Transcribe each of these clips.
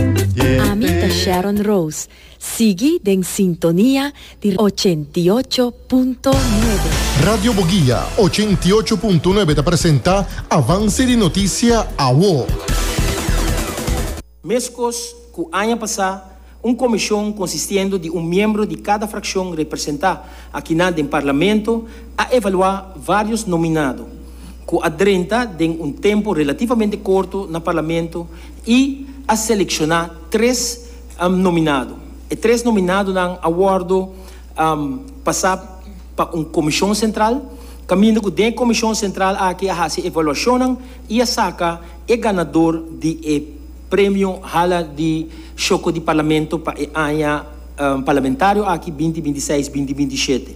Ami ta Sharon Rose, sigui den sintonia di ochenta i ocho punto nuebe. Radio Boguia ochenta i ocho punto nuebe ta presenta Avance di Noticia Awo. Meskos ku aña pasá, un komishon konsistiendo di un miembro di kada frakshon representá akinan den Parlamento a evaluá vários nominado ku a drenta den un tempu relativamente korto na Parlamento I a selekshona tres nominado. E tres nominadonan a wòrdu pasá pa un komishon sentral, kaminda ku den komishon sentral aki a hasi evaluashonnan i a saka e ganador di e Premio Hala di Shoko di Parlamento pa e aña parlamentario aki binti binti seis, binti binti shete.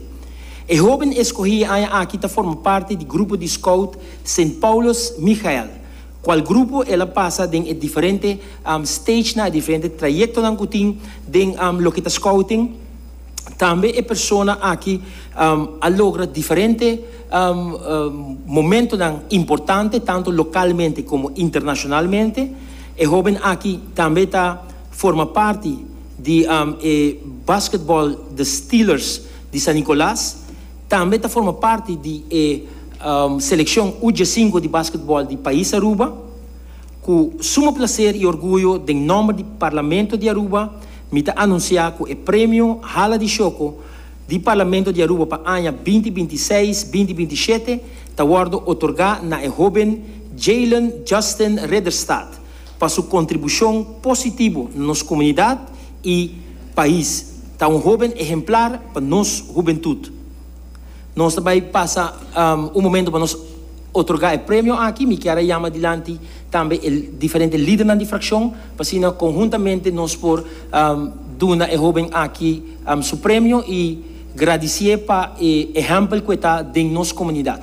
E hóben eskohí e aña aki ta forma parti di grupo di Skout Sint Paulus Michael. Cual grupo el a pasa den e diferente stagenan, e diferente trayectonan cu tin den loke ta scouting. Tambe e persona aki a logra diferente momentonan importante tanto localmente como internacionalmente. E hoben aki tambe ta forma parti di e basketbal The Steelers di San Nicolas. Tambe ta forma parti di e selekshon U-diesinko di basketbòl di pais Aruba. Ku suma plaser i orguyo den nòmber di Parlamento di Aruba mi ta anunsiá ku e Premio Hala di Shoko di Parlamento di Aruba pa aña binti binti seis, binti binti shete ta wòrdu otorgá na e hóben Jaylen Justin Ridderstad, pa su kontribushon positivo na nos komunidat i pais. Ta un hoben ehemplar pa nos hubentut. Nos ta bai pasa un momento pa nos otorgá e premio aki. Mi kier a yama dilanti tambe e diferente lidernan di frakshon pa asina konhuntamente nos por duna e hoben aki su premio i gradisié pa e ehèmpel ku e ta den nos komunidat.